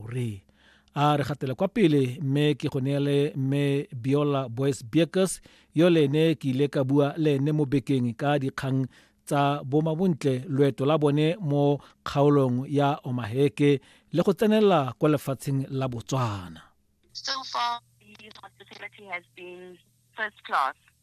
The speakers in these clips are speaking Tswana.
Re a re gatele kwa pele mme ke go neele mme Biola Boys Beekers yo le ene ke ile ka bua le ene mo bekeng ka dikgang tsa bomabontle loeto la bone mo kgaolong ya Omaheke le go tsenela kwa lefatsheng la Botswana. So far, the hospitality has been first class.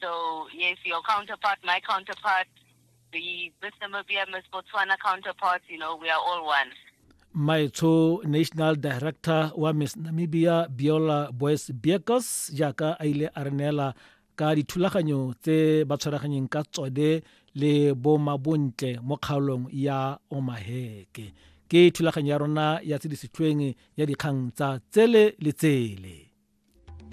So yes, your counterpart, my counterpart, the Miss Namibia, Miss Botswana counterparts, you know, we are all one. maetsho national director wa miss namibia biola boys biekos jaaka a ile a re neela ka dithulaganyo tse ba tshwaraganyeng ka tsone le bomabontle mo kgaolong ya omaheke ke thulaganyo ya rona ya tse di setlhweng ya dikgang tsa tsele le tsele